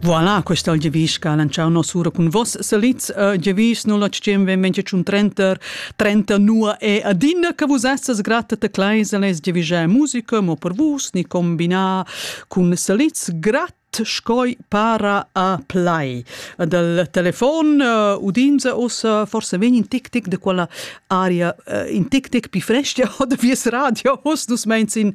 Voilà, questa è il Gevisch che ha lanciato noss'ora con vos salids. Uh, Gevisch 0815 25 30 30 nu e adina che vos essas grata te kleise les Gevischä musica, mo per vos ni combinà con salids gratis scoi para a play. Dal telefon uh, udinza ossa forse vegn in tic tic de quella aria uh, in tic tic pi fresca od vies radio os dus meins in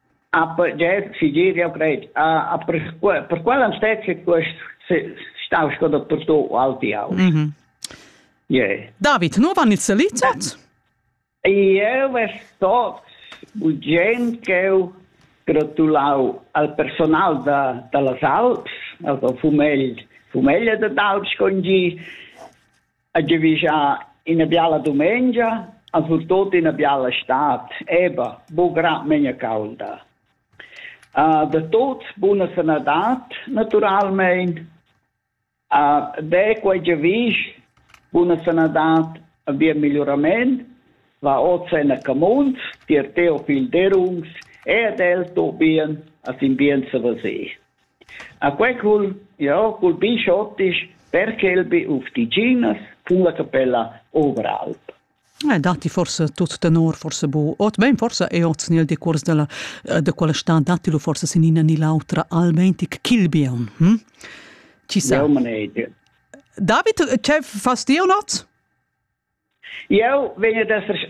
A pertgei figir jeu cret a a per per quella statue quest stau sco dottorstò o altiau. Mhm. Yeah. David, nu van il selitat? Eu ves tot urgent ch'eu gratulau al personal da, da las Alps, al fumegl, fumeglia da d'Alps con gi, ha giavischà ina biala dumengia, ha surtut ina biala stad, eba, bugra megna caulda. Uh, da tuts buna sanadad, naturalmein. Uh, de quei giavisch, buna sanadad, ein bien migliorament, va oz en a camuns, tier teo fil derungs, e ad el to bien, as in bien savasé. A quei cul jeu culpisch otisch perche el bi ufficinas cun la capella Oberalp. Eh, datti forsa tut tenor forsa bu ot bein forsa ei oz nel decuors della eh, de quella stad datti lu forsa sin ina ni l'autra almentic Kilbion. Hm? Ci sa? Jau manege. David, ce fas ti un oz? Jau vegn ad esser